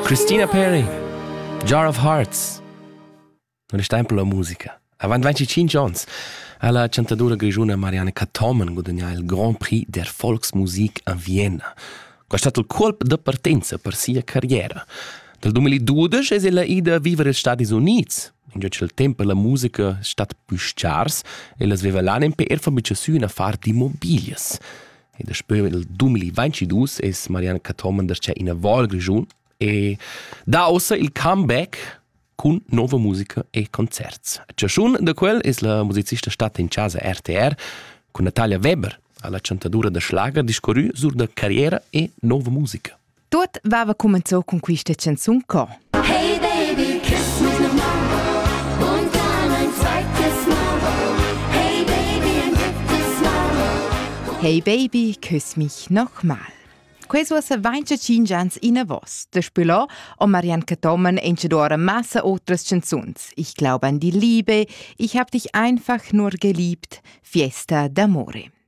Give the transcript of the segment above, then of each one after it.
Christina Perry, Jar of Hearts. Un stempo la musica. Avant 25 ans ha la chantadora grigiuna Marianne Cathomen gudagnà il Grand Prix der Volksmusik a Vienna. Quest è stato il colp da partenza per sia carriera. Dal 2012 è ella ida a vivere negli Stati Uniti. Ingiò il tempo la musica è stata più scarsa e la sveva l'anima per far una far di mobilis. E daspö nel 2022 es Marianne Cathomen darcheu in Val Grischun e dà ossa il comeback cun nova musica e concerts. A chaschun da quel es la musicista stata in chasa RTR cun Natalia Weber alla chantadura da schlager discorrü sur da carriera e nova musica. Tuot vava cumenzò cun quista chanzun co. Hey baby, kiss me now. Und dann ein zweites Mal. Hey baby, ein drittes Mal. Hey baby, küss mich nochmal. Ques was 25 ans in vos. De Spüler o Marianne Tommen encedoare massa otras chanzuns. Ich glaube an die Liebe, ich hab dich einfach nur geliebt. Fiesta d'amore.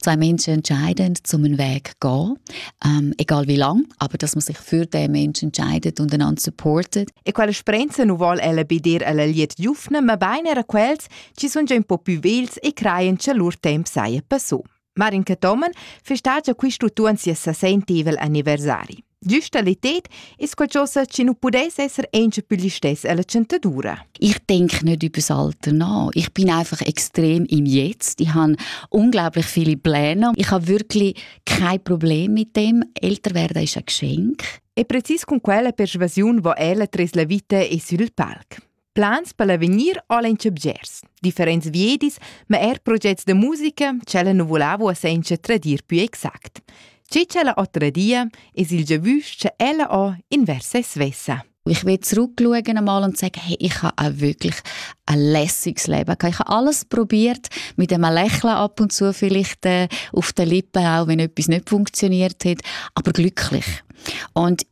zwei Menschen entscheiden, zum Weg gehen, ähm, egal wie lang, aber dass man sich für den Menschen entscheidet und einander supportet. E quelle sprenze nu vol ella be dir alla liet giufne, ma beine era quels, ci sun già un po' più vils e creien che lur temp saia passò. Marin Tomen versteht ja quist utuon sia sesentivel anniversari. Giusta l'etet es qualchosa chi nu pudess esser auncha pü listess alla centadura. Ich denke nicht über das Alter nach. Ich bin einfach extrem im Jetzt. Ich habe unglaublich viele Pläne. Ich habe wirklich kein Problem mit dem. Älter werden ist ein Geschenk. E precis con quella persuasiun vo ella tras la vita e sül palc. Plans per l'avegnir ho el auncha bgers, differents viedis, ma eir progets da musica ch'ella nu volava uossa incha tradir pü exact. Che ch'ella ho tradia es il giavüsch cha ella ho inversa e svessa. Ich will zurückschauen einmal und sagen, hey, ich habe auch wirklich ein lässiges Leben gehabt. Ich habe alles probiert, mit einem Lächeln ab und zu vielleicht äh, auf den Lippen, auch wenn etwas nicht funktioniert hat, aber glücklich. Und